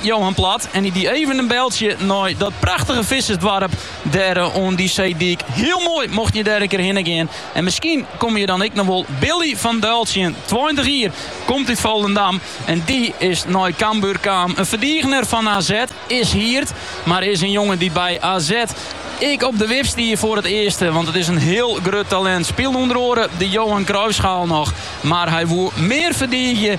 Johan Plat en hy die even in beltsje nei dat prachtige vissersdoarp dêr eh, oan dy seedyk. Hiel moai, mochten je dêr in kear hinne gean. En miskien komme je dan ek noch wol Billy van Duijl tsjin. 20 jier, komt út Volendam en dy is nei Cambuur kaam. In ferdigener fan AZ, is hierd, mar is in jonge dy't by AZ ek op de wip stie foar it earste, want it is in hiel grut talint. Spielde ûnder oare de Johan Cruijffschaal noch, mar hy woe mear ferdiegje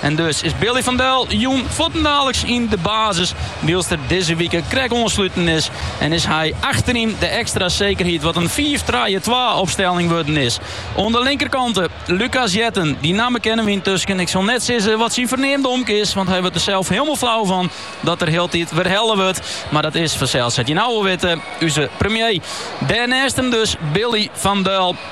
En dus is Billy van Duijl jûn fuortendaliks yn de basis. Wylst er dizze wike krek oansluten is. En is hy achteryn de ekstra sekerheid wat in fiif trije twa opstelling wurden is. Oan de linkerkant eh Lucas Jetten. Dy namme kenne wy yntusken. Ik sil net sizze wat syn ferneamde omke is, want hy wurdt der sels hielendal flau fan dat er hieltyd werhelle wurdt. Mar dat is fansels, sa't je no al witte, ús premier. Dêr nêst him dus Billy van Duijl.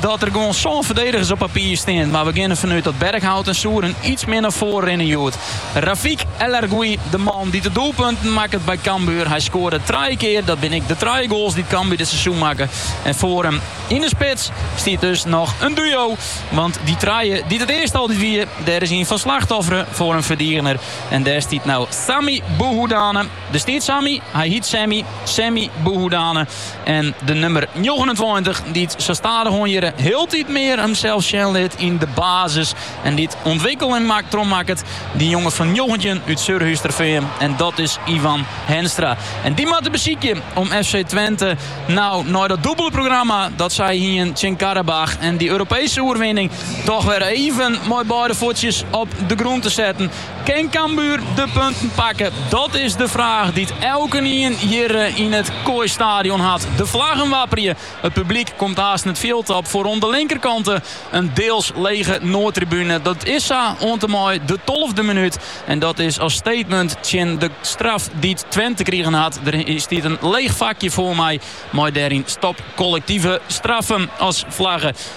Dat der gewoan sân ferdedigers op papier stean, mar we gean derfan út dat Berkhout en Souren iets mear nei foaren rinne hjoed. Rafik El Arguioui, de man dy't de doelpunten makket by Cambuur. Hy skoarde trije kear, dat binne ek de trije goals dy't Cambuur dit seizoen makke. En foar him yn de spits stiet dus noch in duo, want dy trije dy't it earst altyd wie, dêr is ien fan slachtoffere foar in ferdigener. En dêr stiet no Sami Bouhoudane. Dêr stiet Sami, hy hiet Sami, Sami Bouhoudane en de nummer 29 dy't sa stadichoan hjirre hieltyd mear himsels sjen lit yn de basis en dy't ûntwikkeling mak trochmakket de jonge fan njoggentjin út Surhústerfean en dat is Iwan Henstra en dy moatte besykje om FC Twente no nei dat dûbele programma dat sy hiene tsjin Qarabağ en dy Europeeske oerwinning toch wer even mei beide fuotsjes op de grûn te setten. Kin Cambuur de punten pakken? Dat is de fraach dy't elkenien hjirre yn it Kooi Stadion hat. De flaggen wapperje, it publyk komt haast it fjild op. Foar oan de linkerkant eh, in deels lege noardtribune. Dat is sa oant en mei de tolfde minút. En dat is as statement tsjin de straf dy't Twente krigen hat. Der stiet in leech fakje foar my mei dêryn stop kollektive straffen as flagge.